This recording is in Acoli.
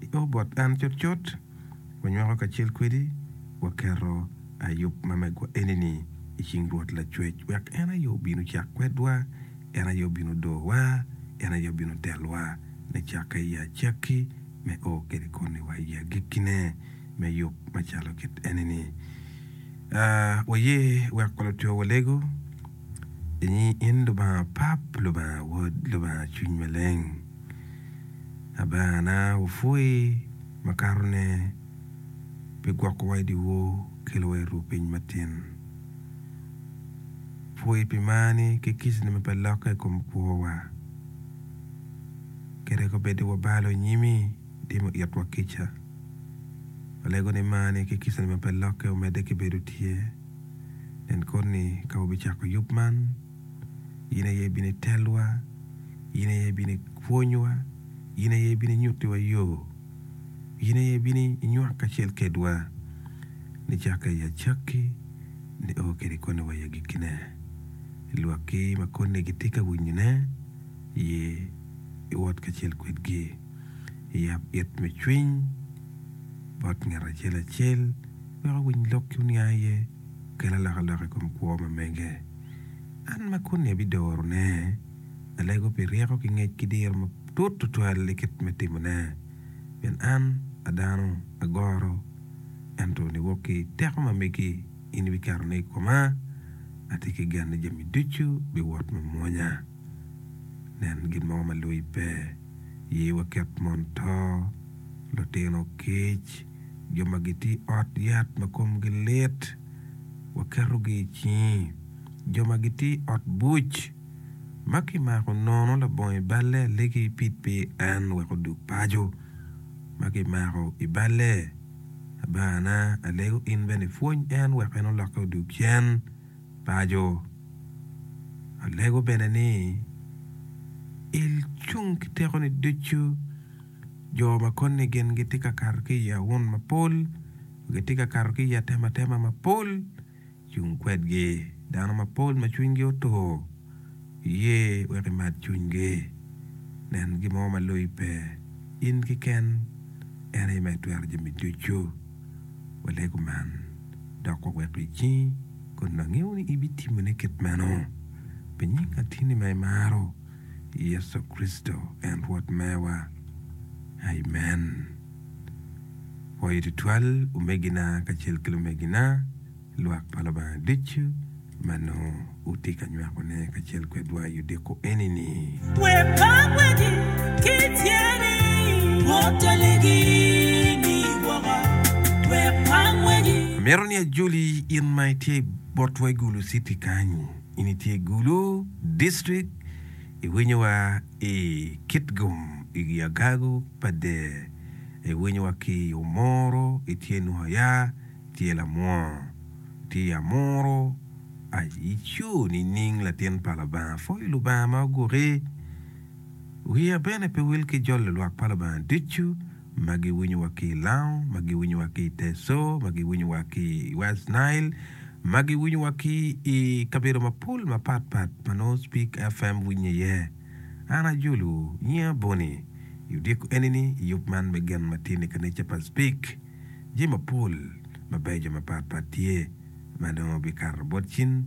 I o bot an cutcut, wanywako kacel kwedi, waketo ayub ma megwa eni-ni i cing Rwot Lacwec, wek en aye obin ocak kwedwa, en aye obin odowa, en aye obin otelwa, me cakke i acakki, me o kede koni wa i agikkine, me yub macalo kit eni-ni. A Waye wek wa lutwewa walegu i nyi in Lubanga Pap, Lubanga Wod, Lubanga Cwiny Maleng. Abana wupwoyi makato ne pi gwoko wa i dyewor kelo wa i ruu piny matin. Pwoyi pi mar ni ki kic ni ma pe lokke i kom kwor wa. Kit ego bed ni wabalo i nyimi itimo it wa kica. Walego ni mar ni ki kica ni ma pe lokke omedde ki bedo tye. Nen kod ni ka wubi cako yub man. in aye ibino itelwa in aye ibino ipwonywa in aye ibino inyutiwa yo in aye ibino inywak kacel kwedwa nicakke i acakki ni o kwede koni wa i agikkine lwakki ma koni gitye ka winyone ye iwot kacel kwedgi yab it me cwiny bot ngat acel acel wek owiny lok ki oniang iye kel alokaloka i kom kwo ma mege. An ma koni abidorone, alego pi ryeko ki ngec ki diro matut tutwal i kit me timone, pien an a dano agoro, ento niwok ki teko ma megi in ibiketone i koma, atye ki gen ni jami ducu biwot me mwonya. Nen gin mogo ma loi pe, ye waket mon to, lutino kic, jo ma gitye i ot yat ma komgi lit, waketogi i cingi, jo ma gitye i ot buc ma kimako nono labongo i balle alegi pid pe en wek odug paco ma kimako i balle abana alego in bene ipwony en wek en olokke odug cen paco alego bene ni il cung ki tekoni ducu jo ma koni gin gitye ka kato ki i awun mapol. Gitye ka kato ki i atematema mapol cung kwedgi. Dano mapol ma cwinygi otur iye wek imat cwinygi. Nen gin mo ma loyi pe. In keken en aye ma itwero jami ducu. Walee kuman dok wawek icingi kun wangeyo ni ibitimone kit meno pi nying Atini ma imaro. Yecu Kricito en Rwot mewa. Amen. Pwoyo tutwal omegina kacel ki lumegina, lwak pa Lubanga ducu ma nongo wutye ka nywakone kacel kwedwa i odiko eni-ni. Amito ni ajoli in ma itye bot wa i Gulu Citi kany. In itye Gulu district iwinyo wa i Kitgum i agagu pa der iwinyo wa ki i Omoro itye Nuhaya itye Lamwongo itye Amuru ai ico nining latin pa Lubanga pwoyo Lubanga ma oguki wiya bene pe wil ki jolo lwak pa Lubanga ducu. ma giwinyo wa ki i Lango, ma giwinyo wa ki i Teso, ma giwinyo wa ki i West Nile, ma giwinyo wa ki i kabedo mapol mapat pat ma nongo Speak FM winye iye. An ajolo, nyinga Bonnie. I odyeko enini, i yub man me gen ma tye ni kanica pa Speak, jami mapol mabeco mapat pat tye ma nongo bikato bot cin,